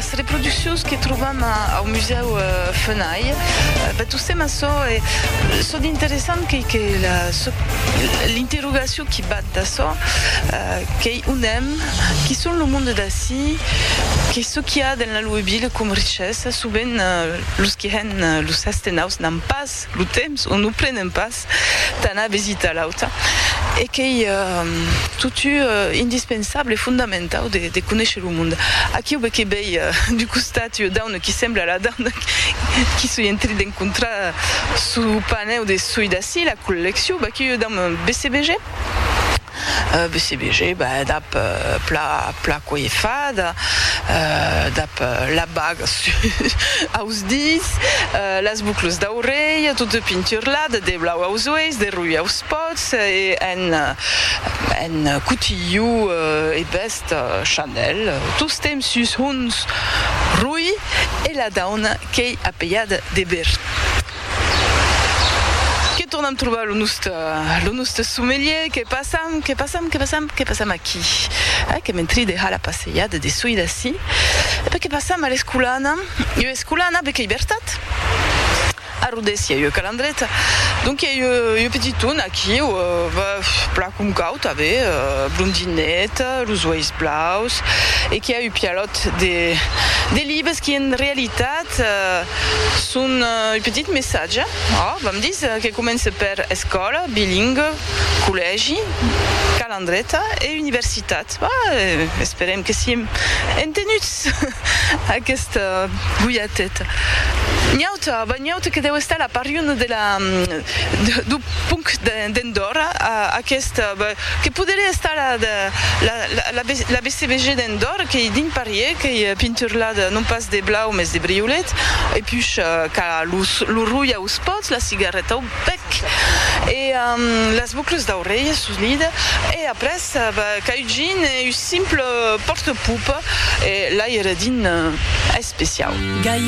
Las reproduccions que trobam au Musèu Fenay, batussèm açò e çò d'interessant qu'ei que l'interrogacion qui bat d'açò qu'ei on èm, qui son lo monde d'ací, que çò qu'i a dens la Loue Ville com richessa, sovent los qui hèn los astenaus n'an pas lo temps o non prenen pas Ras d'anar visitar l'auta e qu'ei totu indispensable e fondamentau de conéisher lo monde. Aquiu be que bèi du costat ua dauna qui sembla la dauna qui soi en trit d'encontrar suu panèu de soi d'ací, la collecciu, b'aquiu ua dauna bcbg. BCBG, ben dab pla pla coifada, dab la baga sus aus dits, las buclas d'aurelha tota pinturlada de blau aus uelhs, de roja aus pòts e en en cotilhou e vèst Chanel, tostemp sus hons roi e la dauna qu'ei apelhada de Berthe. Que tornam trobar lo noste, lo noste sommelier, que passam, que passam, que passam, que passam aquí, eh, que mentri deha la passejada de soi d'ací, e pas que passam a l'Escolana, ieu Escolana, be qu'ei vertat, a Rodés i a ieu Calandreta, donc i a ieu, ieu petiton aquiu, bèf, plan com cau tanben, blondinet, los uelhs blaus, e qui a eu pialòt de, de libes qui en realitat, Son ua petit messatge, òc, vam dis, que comence per escòla, bilingue, collègi, calandreta e universitat. Esperem que siem entenuts aquesta golhateta. N'i auta, ben n'i auta que deu estar la pariona de la, dau ponc d'Andòrra a aquesta, ben, Que poderé estar a la BCBG d'Andorre, qu'ei dins Parièr, qu'ei pinturlat non pas de blau mès de briolet, e push qu'a lo rulh aus pòts, la cigarreta au bèc e las bucles d'aurelha sus l'ida, e après qu'a ugin un simple pòrte-pupa e l'aire dins especiau.